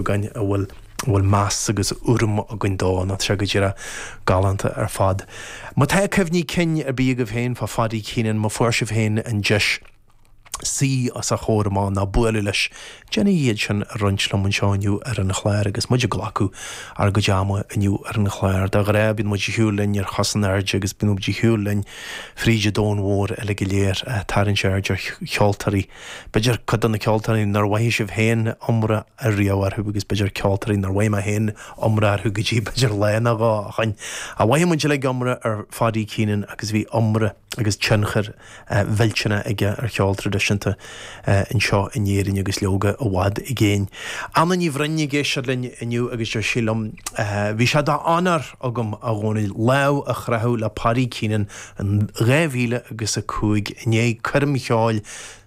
againn a bhfuil a bhfuil meas agus urram againn dó, ná tá sé go díreach galánta ar fad. Má tá cuimhní cinn ar bith agaibh féin fá Phaddy Keenan, má fuair sibh féin an deis suí os a chomhair amach, ná bualadh leis, déanaigí iad sin a roinnt liom anseo inniu ar an chlár agus muid ag glacadh ár gcuid ama inniu ar an chlár. De ghnáth, bíonn muid ag siúl linn ar cos in airde agus bíonn muid ag siúl linn fríd an domhan mhór uilig go léir ag tarraingt aird ar cheoltóirí B'fhéidir cuid de na ceoltóirí nár mhoithigh sibh féin iomrá a riamh orthu agus b'fhéidir ceoltóirí nár mhoithigh mé féin iomrá orthu go dtí b'fhéidir lá ná dhó ó shin. Ach mhoithigh muid uilig iomrá ar Paddy Keenan agus bhí iomrá agus tionchar millteanach aige ar cheol traidisiúnta anseo in Éirinn agus leoga i bhfad i gcéin. Anna Ní Bhroin ag éisteacht linn inniu agus deir sí liom, Bhí sé d'onóir agam, a Dhónaill, lámh a chroitheadh le Paddy Keenan in dhá mhíle agus a cúig, i ndiaidh coirm cheoil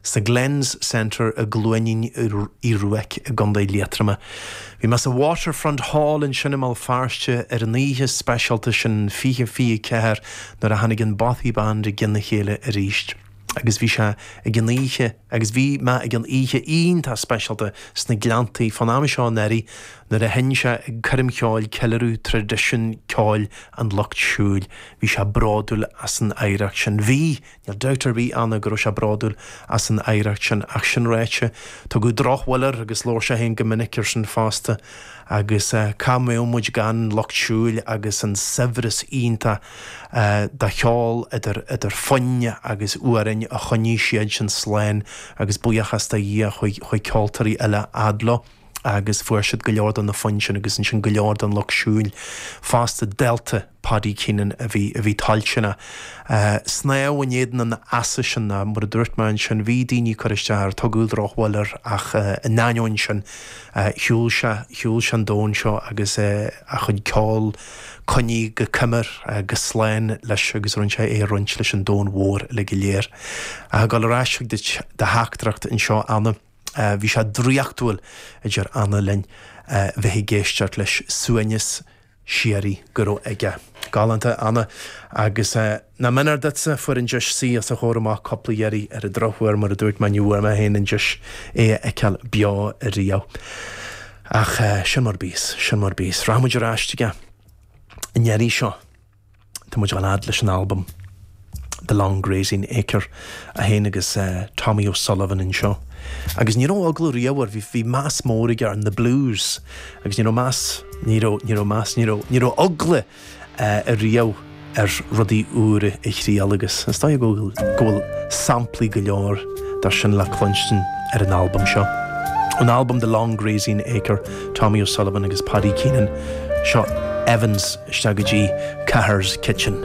sa Glens Centre i gCluainín Uí Ruairc i gContae Liatroma, bhí mé sa Waterfront Hall ansin i mBéal Feirste ar an oíche speisialta sin fiche fiche ceathair nuair a tháinig an Bothy Band i gcionn a chéile arís agus bhí sé ag an oíche agus bhí mé ag an oíche iontach speisialta sna Gleanntaí fán am seo anuraidh nuair a sheinn sé ag coirm cheoil ceiliúradh traidisiún ceoil an lucht siúil. Bhí sé bródúil as an oidhreacht sin. Bhí! Níl dabht ar bith ann go raibh sé bródúil as an oidhreacht sin. Ach sin ráite, tugadh drochbhail air agus labhair sé féin go minic ar sin fosta. Agus cá háit a mbeadh muid gan an lucht siúil agus an saibhreas iontach de cheol idir foinn agus amhráin a choinnigh siadsan slán agus buíochas do Dhia chuaigh ceoltóirí eile ag plé leo agus fuair siad go leor de na foinn sin agus ansin go leor den lucht siúil fosta dálta Paddy Keenan a bhí toilteanach snámh in éadan an easa sin ná mar a dúirt mé ansin bhí daoine ag cur isteach air tugadh drochbhail air ach in ainneoin sin shiúil sé an domhan seo agus a chuid ceoil Coinneáilte go coimir agus go slán leis agus rinne sé é a roinnt leis an domhan mhór uilig go léir. Ach ag dul ar ais chuig do theachtaireacht anseo Anna, bhí sé draíochtúil, a deir Anna linn, bheith ag éisteacht leis suaimhneas Síoraí go raibh aige. Galánta Anna agus. Nár mhéanar duitse, fuair an deis suí os a chomhair amach cúpla iarraidh ar an drochuair, mar a dúirt mé ní bhfuair mé féin an deis é a fheiceáil beo riamh. Ach sin mar bhíos, sin mar bhíos. Rachaidh muid ar ais chuige an iarraidh seo. Tá muid ag fanacht leis an albam The Long Grazing Acre é féin agus Tommy O'Sullivan anseo. Agus ní raibh eagla riamh air, bhí meas mór aige ar na blues agus ní raibh meas, ní raibh, ní raibh meas, ní raibh, ní raibh eagla. riamh ar rudaí úra a thriail agus is dóigh go bhfuil samplaí go leor dá sin le cluinstin ar an albam seo. Ón albam The Long Grazing Acre, Tommy O'Sullivan agus Paddy Keenan, seo linn isteach go dtí Cahir's Kitchen.